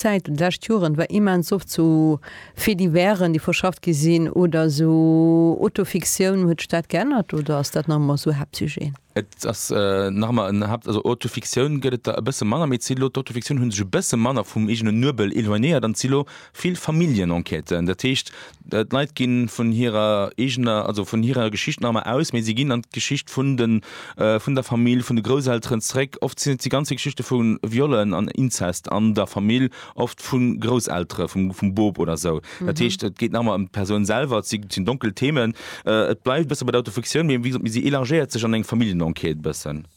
Zäit an de lescht Joren war immens oft sou Faits divers-en, déi verschafft gi sinn, oder sou Auto-Fiktioun. Huet sech dat geännert oder ass dat nach ëmmer sou Haaptsujeten? Et ass nach ëmmer en Haapt, also Auto-Fiktioun gëtt et der e bësse manner, mee et si lo, d'Auto-Fiktioun hu sech e bësse manner vum eegene Nuebel eloignéiert an et si lo vill Familljen-Enquêten. Dat heescht, D'Leit ginn vun hirer eegener, also vun hirer Geschicht nach emmer aus, mee si ginn an d'Geschicht vun de, vun der Famill, vun de Grousselteren zeréck. Oft sinn et déi ganze Geschichte vu Viollen an Inzest an der Famill, oft vu Grousseltere, vum, vum Bop oder esou. Dat heescht, et geet nach emmer ëm d'Persoun selwer, et si, sinn donkel Themen. Et bleift e bësse bei der Autofiktioun, mee wéi gesot, si élargéiert sech an eng Familljenenquête e bëssen.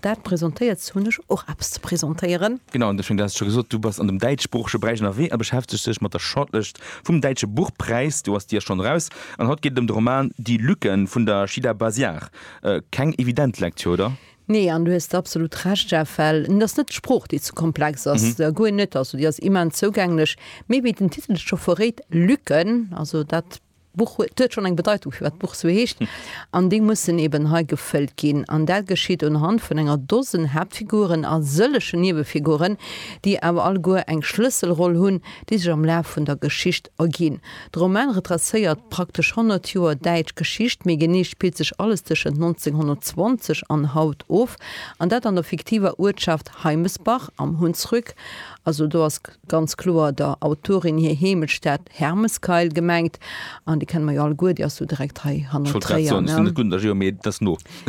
Dat presentéierts hunn ech och eppes ze presentéieren. Genau, an deschwéngt haas ech scho gesot, du bass an dem däitschsproochege Beräich ënnerwee a beschäftegs dech mat der Shortlëscht vum Däitsche Buchpräis. Do ass d'Dier schonn eraus an haut geet et ëm de Roman Die Lücken vun der Shida Baziar. Keng evident Lektür, oder? Nee, an du hues absolut Recht, Jeff, well et ass net d'Sprooch, déi ze komplex ass, guer net, also déi ass immens zougänglech, mee wéi den Titel et scho verréit, Lücken, also dat D'Buch huet, huet schonn eng Bedeitung, firwat d'Buch sou heescht, an déi mussen eben hei gefëllt ginn. An dat geschitt unhand vun enger Dosen Haaptfiguren a sëllechen Niewefiguren, déi awer alleguer eng Schlësselroll hunn, déi sech am Laf vun der Geschicht erginn. De Roman retracéiert praktesch 100 Joer däitsch Geschicht, méi genee spillt sech alles tëschent 1920 an haut of, an dat an der fiktiver Uertschaft Heimesbach am Hunsrück, also do ass. ganz kloer der Autorin hir Heemechtsstad Hermeskeil gemengt, an déi kenne mer jo alleguer, déi ass jo direkt hei hanner Tréier, ne?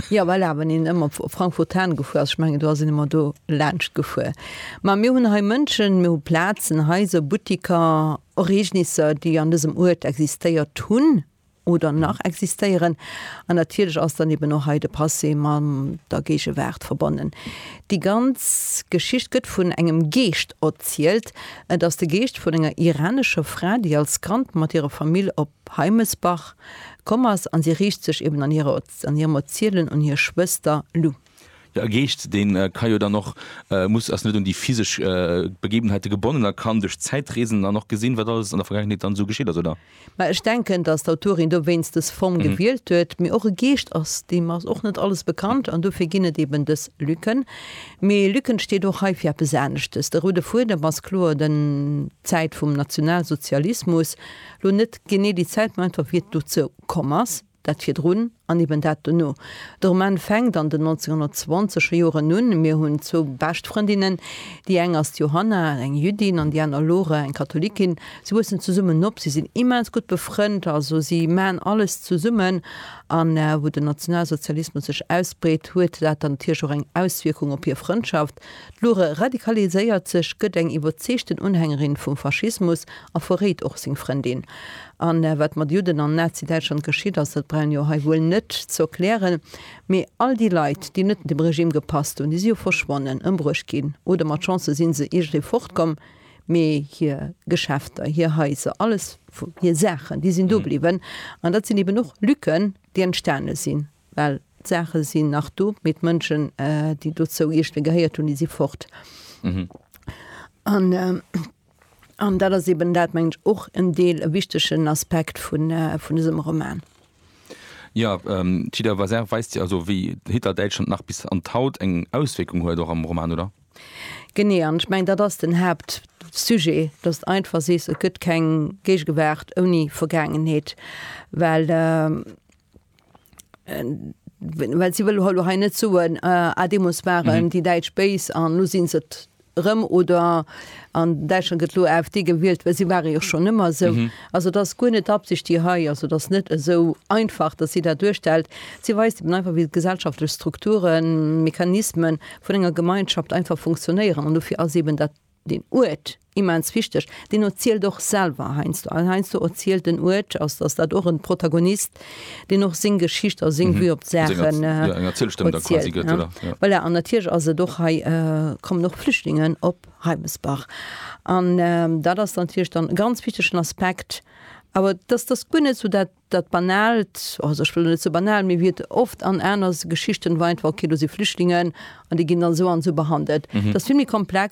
Jo, voilà, wann een ëmmer op Frankfurt Hahn gefuer ass, ech mengen, do ass een ëmmer do laanscht gefuer. Mä mir hunn hei Mënschen, mir hu Plazen, Haiser, Buttiker, Ereegnisser, déi an dësem Uert existéiert hunn, oder nach existéieren, an natierlech ass dann eben och hei de Passé mam der Géigewaart verbonnen. Déi ganz Geschicht gëtt vun engem Geescht erzielt. Et ass de Geescht vun enger iranescher Fra, déi als Kand mat hirer Famill op Heimesbach komm ass, an si riicht sech eben an hirem Erzielen un hir Schwëster Lou. Jo, e Geescht, dee ka jo dann och, muss, ass net un déi physesch Begebenheite gebonnen a kann duerch Zäitreesen dann och gesinn, wat alles an der Vergaangenheet dann esou geschitt ass, oder? Mä ech denken, datt d'Autorin dowéinst dës Form gewielt huet. Mee och e Geescht ass, deem ass och net alles bekannt an dofir ginn et eben dës Lücken. Mee Lücken steet och hei fir eppes aneschtes. De roude Fuedem ass kloer den, d'Zäit vum Nationalsozialismus. Lo net genee déi Zäit, mä einfach wéi et dozou komm ass. Dat virdrun an eben dat dono. De Roman fänkt an den 1920er Joren un. Mir hunn zwou bescht Frëndinnen. Déi eng ass d'Johanna, eng Jüddin, an déi aner Lore, eng Katholikin. Si wuessen zesummen op, si sinn immens gutt befrënnt, also si maachen alles zesummen. An wou den Nationalsozialismus sech ausbreet, huet dat dann natierlech och eng Auswierkung op hir Frëndschaft. Protest. D'Lore radikaliséiert sech, gëtt eng iwwerzeegten Unhängerin vum Faschismus a verréit och seng Frëndin. A wat mat Judden an Nazidäitschland geschitt ass, dat brauch een jo hei wuel net ze erklären. Mee all déi Leit, déi net dem Regime gepasst hunn, déi si jo verschwonnen, ëmbruecht ginn oder mat Chance si se iergendwéi fortkomm, mee hir Geschäfter, hir Haiser, alles, hir Saachen, déi sinn do bliwwen. An dat sinn eben och Lücken, déi entstane sinn. Well d'Saache sinn nach do, mee d'Mënschen, déi dozou iergende gehéiert hunn, déi si fort. An dat ass eben dat, mengen ech, och en Deel e wichtegen Aspekt vun dësem Roman. Jo, d'Hidda Vazer weist jo also, wéi Hitler-Däitschland nach bis an d'haut eng Auswierkung huet, och am Roman, oder? Genee. An ech mengen, dat ass den Haaptsujet, dass de einfach sees, et gëtt keng Géigewaart ouni Vergaangenheet. Well well si wëlle lo hei net soen, ah, ah, deemools waren déi Däitsch béis an elo si se et erëm oder an Däitschland gëtt elo AfD gewielt, well si ware jo schonn ëmmer esou. Also et ass guer net d'Absicht déi hei ass, et ass net esou einfach, datt si dat duerstellt. Si weist eben einfach, wéi d'gesellschaftlech Strukturen, Mechanismen vun enger Gemeinschaft einfach funktionéieren an dofir ass eben dat, Den Uert, immens wichteg, deen erzielt och selwer heiansdo. Also heiansdo erzielt den Uert, also ass dat och en Protagonist, deen och seng Geschicht a seng Vue op d'Saachen erzielt. Voilà, an natierlech ass et och hei, kommen och Flüchtlingen op Reimesbach. An dat ass natierlech dann e ganz wichtegen Aspekt. Awer et ass, et ass guer net esou dat, dat Banaalt, also ech wëll net esou banal, mee wéi et oft an aner Geschichten war einfach, okay, do si Flüchtlingen an déi ginn dann esou an esou behandelt. Et ass vill méi komplex.